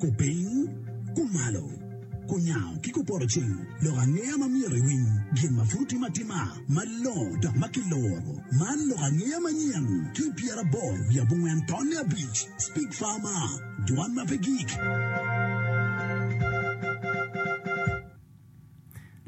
Kupiny, kumalo, kunyango ki kupoto cing lok angeya ma myero iwiny, gin ma pud otim atima malongo dok ma kiloro. Man lok angeya manyen ki i pyeraboro wiye abongwen tonne abic, Speak Farmer, Dwan ma pe Gik.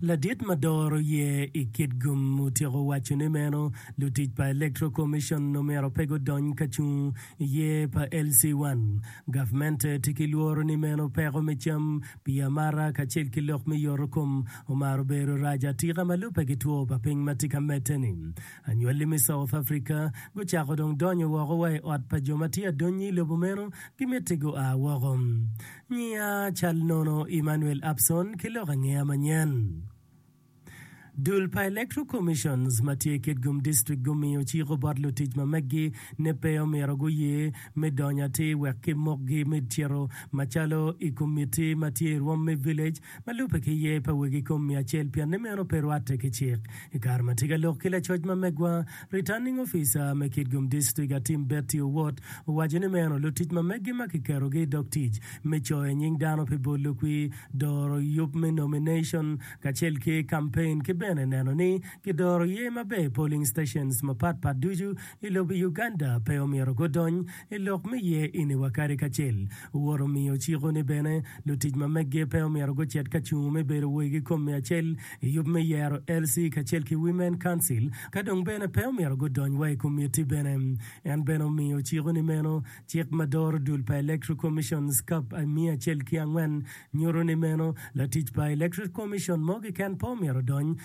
Ladit ma doro ye i kit gum otyeko waco ni meno lutic pa Electoral Commission omyero pe gudony ka cung i ye pa LC-1. Gavmente tye ki lworo ni meno peko me cam, pii amata kacel ki lok me yoto kom omaro bedo rac atika ma lubbe ki two pa piny ma tye ka medde ni. Anywali me South Africa gucako dong donyo woko wa i ot pa jo ma tye adonyi i lobo meno gimitti gua woko. Nyiya cal nono Emmanuel Abson ki lok angeya manyen. Dul pa Electoral Commissions ma tye Kitgum District gumiyo ciko bot lutic ma meggi ni pe omyero guye me donyo atir wek kimokgi me cito macalo i komitti ma tye i rwom me village ma lubbe ki ye pa wegi kom miya acel pienni meno pe rwatte ki cik. I kare ma tye ka lok ki lacoc ma megwa, Returning Officer me Kitgum District Atim Betty Owot owaco ni meno lutic ma meggi ma kiketogi i dog tic me coyo nying dano pi bolo kwi, doro yub me nomination kacel ki campaign ki bene neno ni kidoro ye maber polling stations mapat pat ducu I lobo Uganda pe omyero gudony i lok me ye ini wa kadi kacel. Wot omiyo ciko ni bene lutic ma meggi pe omyero gucit ka cungo me bedo woi ki kom me acel i yub me yero LC kacel ki Women Council ka dong bene pe omyero gudony wa i komitti bene. En bene omiyo ciko ni meno cik ma doro dul pa Electoral Commissions kap I miya acel ki angwen nyuto ni meno latic pa Electoral Commission mo keken pe omyero odony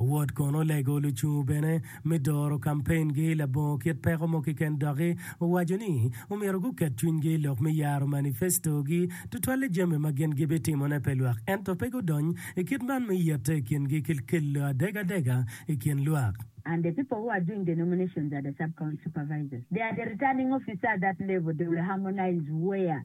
Owot kono olego lucung bene me doro kampengi labongo kit peko mo keken doki owaco ni omyero guket cwinygi lok me yaro manifestogi tutwalle jami ma gin gibitimone pe lwak ento pe gudony i kit man me yette i kingi ki kelo adegadega i kin lwak. And the people who are doing the nominations are the sub-county supervisors. They are the returning officer at that level, they will harmonize where.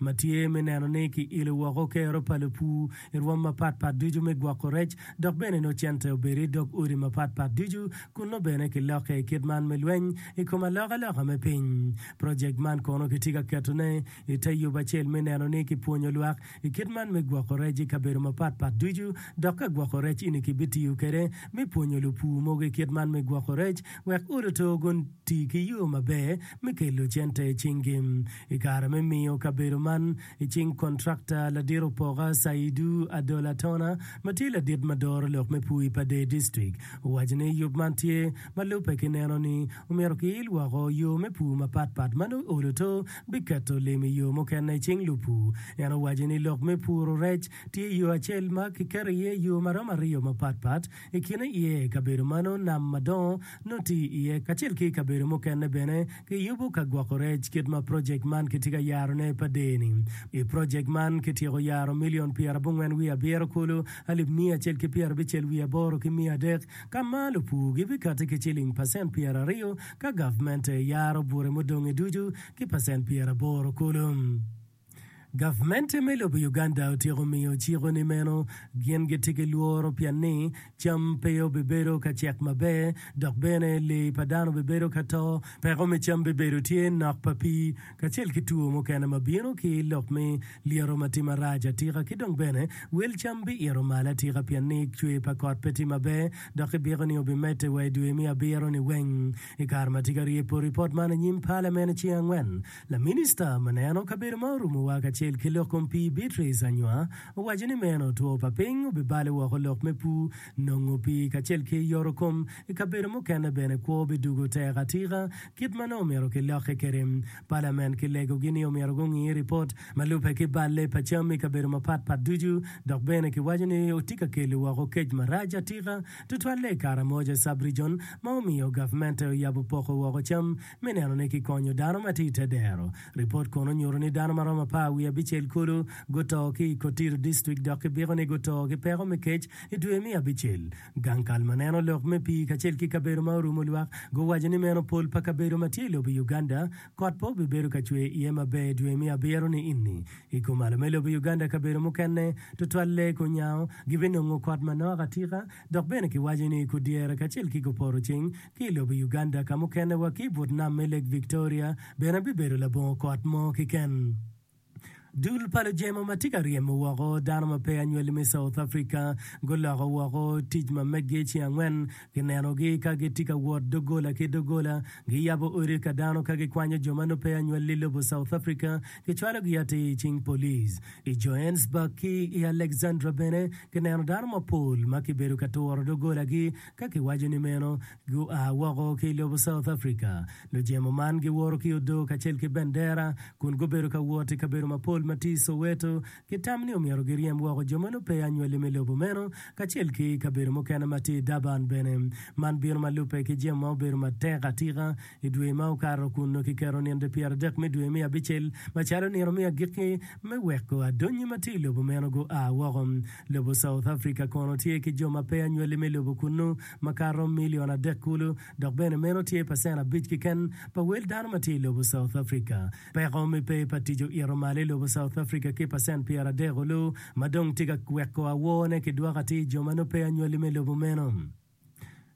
ma tye me neno ni kiilo woko kero pa lupur i rwom mapat pat ducu me gwoko rec, dok bene nongo cente obedo i dog odi mapat pat ducu kun nongo bene kilokke i kit man me lweny i kom alokaloka me piny. Projekt man kono kitye ka ketone i te yub acel me neno ni kipwonyo lwak i kit man me gwoko rec i kabedo mapat pat ducu, dok ka gwoko rec ini kibitiyo kwede me pwonyo lupur mogo i kit man me gwoko rec wek odi oto guti ki yo maber me kelo cente i cingi. I kare me miyo kabedo man i cing kontrakta ladit opoka, Saidu Adola Tona, ma tye ladit ma doro lok me pur i Padee District, owaco ni yub man tye ma lubbe ki neno ni omyero kiil woko yo me pur mapat pat ma nongo olo to biketo lim i yo mukene i cing lupur. En owaco ni lok me puro rec tye yo acel ma kiketo iye yo ma romo aryo mapat pat, I kine iye kabedo mano nam madongo nongo tye iye kacel ki kabedo mukene bene kiyubo ka gwoko rec kit ma projek man kitye ka yarone pa dee-ni. I projek man kityeko yaro milion pyerabongwen wiye abiro kulu alip miya acel ki pyerabicel wiye aboro ki miya adek ka ma lupur gibikati ki ciling pacent pyeraryo ka gavmente yaro bute mudonge ducu ki pacent pyeraboro kulu. Gavmente me lobo Uganda otyeko miyo ciko ni meno gin gitye ki lworo pien ni cam pe obibedo ka cek maber dok bene lee pa dano bibedo ka to, peko me cam bibedo tye, nok pa pii kacel ki two mukene ma bino ki lok me lyeto ma tye marac atika ki dong bene wel cam biito malo atika pien ni cwer pa kot pe tye maber dok kibiko ni obimedde wa i dwe me abiro ni weng. I kare ma tye ka rye poti pot man anyim palamen i ceng angwen, Laminista ma neno kabedo ma orumowa kacel ki lok kom pii Beatrice Anywa owaco ni meno two pa piny obibale woko lok me pur, nongo pii kacel ki yoto kom i kabedo mukene bene kwo bidugo tek atika kit ma nongo omyero kilokke kwede. Palamen ki legogi ni omyero gungi ripot ma lubbe ki balle pa cam i kabedo mapat pat ducu dok bene kiwaco ni otye ka kelo woko kec marac atika tutwalle i Karamoja Sub-Region ma omiyo gavmente oyabo poko woko cam me nenone ki konyo dano ma tye i te dero. Ripot kono nyuto ni dano ma romo apar wiye abicel kulu guto ki i Kotiro District dok kibiko ni guto ki peko me kec i dwe me abicel. Gang kal ma neno lok me pii kacel ki kabedo ma orumo lwak guwaco ni meno pol pa kabedo ma tye i lobo Uganda kot pe obibedo ka cwer iye maber dwe me abiro ni ini. I kumalo me lobo Uganda kabedo mukene tutwal lee kunyango gibinongo kot manok atika dok bene kiwaco ni kudyere kacel ki kupotoceng Ki i lobo Uganda ka mukene wa ki i but nam me Lake Victoria bene bibedo labongo kot mo keken. Dul pa lujemo ma tye ka ryemo woko dano ma pe anywali me South Africa guloko woko tic ma meggi ceng angwen. Kinenogi ka gitye ka wot doggola ki doggola, giyabo odi ka dano ka gikwanyo jo ma nongo pe anywali i lobo South Africa, kicwalogi atir i cing police. I Johannesburg ki i Alexandra bene kineno dano mapol ma kibedo ka turo doggolagi Ka kiwaco ni meno, gua woko ki i lobo South Africa. Lujemo man giworo ki odoo kacel ki bendera kun gubedo ka wot i kabedo mapol ma tye i Soweto. Gitam ni omyero giryem woko jo ma nongo pe anywalli me lobo meno kacel ki kabedo mukene ma tye i Durban bene. Man bino ma lubbe ki jemo ma obedo matek atika I dwe ma okato kun kiketo nino pyeradek me dwe me abicel macalo nino me agikki me weko adonye ma tye i lobo meno gua woko. Lobo South Africa kono tye ki jo ma peya nywali me lobo kunnu makato milion adek kulu, dok bene meno tye pacen abic keken pa wel dano ma tye i lobo South Africa. Peko me pe pa tic oito malo i lobo South Africa ki pacen pyeradek olu ma dong tye ka weko awor ne ki dwoko atir jo ma nongo peya nywali me lobo meno.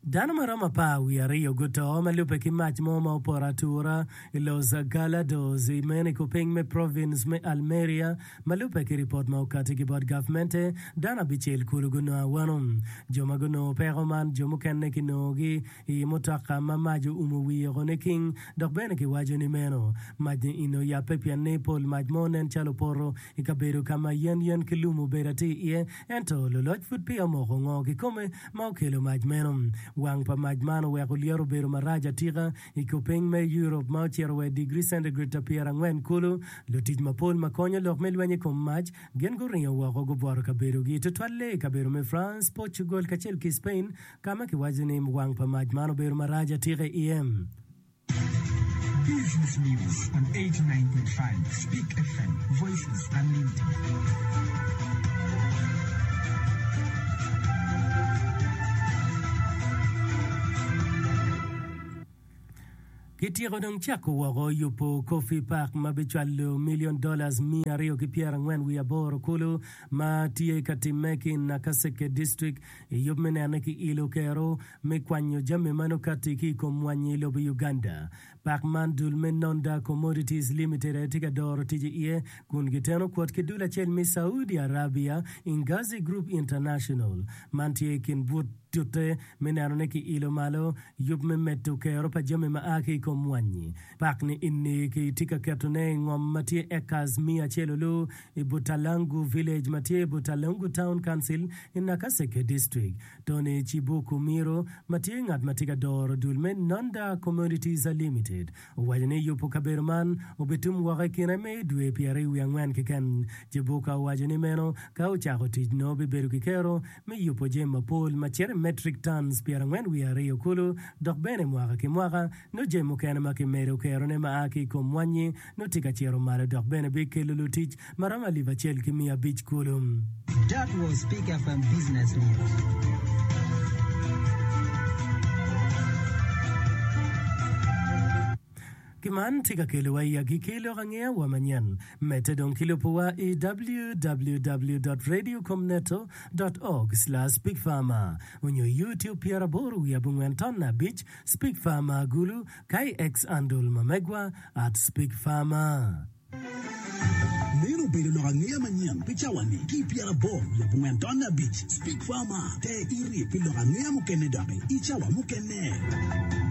Dano ma romo apar wiye aryo guto ma lubbe ki mac mo ma opoto atura i Los Gallardos i meno i kupiny me province me Almeria. Ma lubbe ki ripot ma okati ki bot gavmente, dano abicel kulu gunongo awano. Jo ma gunongo peko man jo mukene kinongogi i i mutoka ma mac oumo wiye woko niking dok bene kiwaco ni meno mac ni eni oyabbe pien ni pol mac mo nen calo opoto i kabedo ka ma yen yen ki lum obedo atir iye Ento luloc pud peya omoko ngo kikome ma okelo mac meno. Wang pa mac man oweko lyeto obedo marac atika. I kopeny me Europe ma ocito wa i digri centigrade ta pyera angwen kulu, lutic mapol ma konyo lok me lweny i kom mac gin guringo woko gubworo kabedogi, tutwalle i kabedo me France, Portugal kacel ki Spain ka ma kiwaco ni wang pa mac man obedo marac atika iye. Kityeko dong cako woko yubo Coffee Park ma bicwalo milion dola miya aryo ki pyerangwen wiye aboro kulu ma tye ka timme ki i Nakaseke District. i yub me nene ki ilo kero me kwanyo jami meno kati ki i kom mwanyi i lobo Uganda. Pak man dul me Nonda Commodities Limited aye tye ka doro ticce iye kun giteno kwot ki dul acel me Saudi Arabia, Ingazi Group International. Man tye i kin but tute me neno ni ki ilo malo yub me medo kero pa jami ma a ki i kom mwanyi. Pak ni inni ki tye ka keto ne i ngom ma tye acres miya acel oloo i Butalangu Village ma tye i Butalangu Town Council i Nakaseke District. Tony Chibuku Miro ma tye ngat ma tye ka doro dul me Nonda Commodities Limited owaco ni yubo kabedo man obitum woko i kine me dwe pyeraryo wiye angwen keken. Chibuka owaco ni meno ka ocako tic nongo bibedo ki kero me yubo jami mapol macito i metric tons pyerangwen wiye aryo kulu dok bene mwaka ki mwaka nongo jami mukene ma kimedo kerone ma a ki i kom mwanyi nongo tye ka cito malo dok bene bikelo lutic ma romo alip acel ki miya abic kulu. That was Pick FM Business News. Ki man tye ka kelowa i agikki lok angeya wa manyen. Medde dong ki lubo wa i www.radiocomneto.org/speakfarmer onyo i YouTube pyeraboro wiye abongwen tonna abic, Speak Farmer, Gulu, KX Andol ma megwa at Speak Farmer. Meno obedo lok angeya manyen pi cawa-ni ki i pyeraboro lub ongen tonne abic. Speak Farmer, Te irib pi lok angeya mukene doki i cawa mukene.